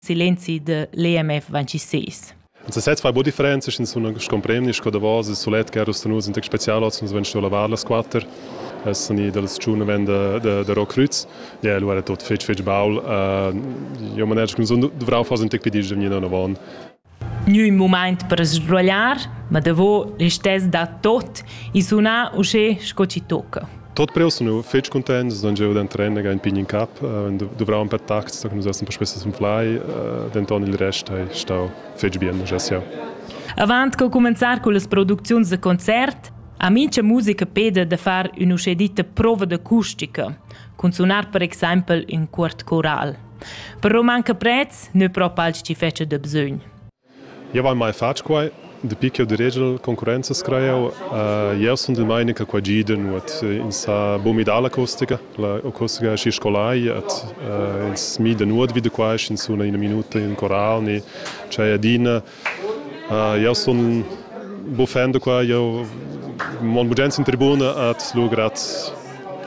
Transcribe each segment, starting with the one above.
silenzi de l'EMF 26. Sesez fai bo differenzas, ins sun scomprendis co davos il sulet che era nus in tec special, oz nus ven sto lavar las quatter, es san i dal tschun ven da da da Rockrüz, ja lu era tot fetg fetg baul, uh, io maner che sun dovrau far un tec pedi da vnina avon. gnü ün mumaint per sbruogliar, ma davo listess da tot i suna uschè sco chi tocca. Tot preus nu fetsch cuntent, sun gieu da trener ün pign in cap, duvraun per tacts, da nus essan perspe sun flai, denton il rest ei stau fetg bien, uschè sia. Avant co cumenzar cullas producziuns da concert, ha mincha musica peda da far ün'uschè ditta prova d'acustica, cun sunar per exaimpel ün cuort coral. Per manca prez nu propa als chi fetscha da bsögn. Eu hai mai fat quai. Dapi ch'eu diregia concurrenzas crajau. Jeu sun dil meini che quei gida nuot. Ins ha buca midà la acustica. La acustica è schi scolai et ins mida nuot vi da quai, sch'ins suna ina minuta in coral ni c'è adina. Jeu sun bu fan da quai. Jeu mon bugen sin tribuna et lugrat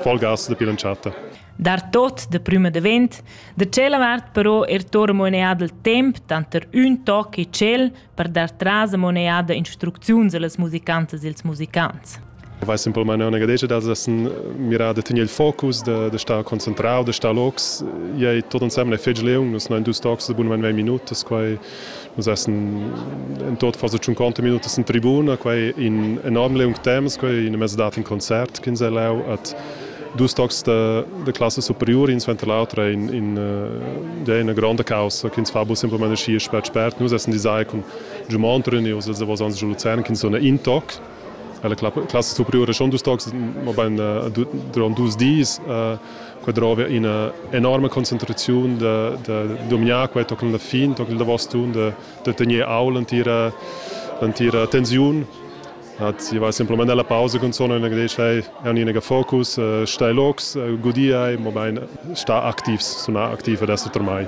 voll gas dapi l'entschatta. dar tot de prüma davent, da tschella vart però er tor moneada il temp tanter ün toc e tschel per dar tras a moneada instrucziuns allas musicantas e als musicants. Vai simpelmente una gadetta dals essen mirà da tenere il focus, da, da star concentrado, da star locs. Iai tot ensemble è fetg leung, nus non dus tocs de bun 20 minutas, quai Nus essen en tot far tschunconta minutas in tribuna, quei in enorm leung temps, quei in mezz dat in concert ch'ins ha lau at dus tocs da, da classa superiura, in suenter l'autra in, in, uh, ja, una gronda caussa che ins fa bu semplamain schi spert spert. Nus essen design cun Giumont Röni, us els davos ans Luzern, che sona in toc. La classa superiura schon dus tocs, ma ben durant dus dis. Uh, Qua drova ina enorma concentraziun da, da dominar qua tochen la fin, tochen il davos tun, da, da tener au l'entira, l'entira tensiun. Hat, sie war simpelmente alla Pause consone und gesagt, hey, erniniger Fokus, äh, stai locs, äh, gudai, mobein sta aktivs, suna aktiv adesso per mai.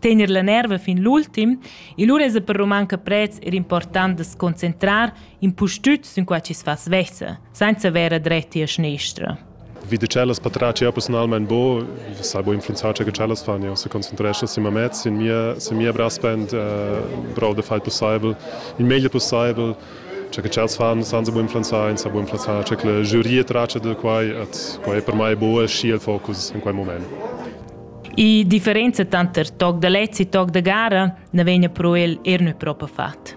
Tener la nerva fin l'ultim, il ura es per romanca prez er important da concentrar in pustüt sin qua ci sfas vessa, senza vera dretti a schnestra. vi da tschellas patratg jau persunalmain bo, sai bo influenzar tge che tschellas fan. Jau se concentrescha sin mamez, sin mia, sin mia braspend, uh, brau da fai possibel, il meglio possibel. Cioè che tschels fan, san se bo influenzar, sa bo influenzar, cioè che la giuria traccia da quai, et quai è per mai bo e schi il focus in quel moment. I differenza tanter toc da lezzi e toc da gara ne vegna pro el er nö propa fat.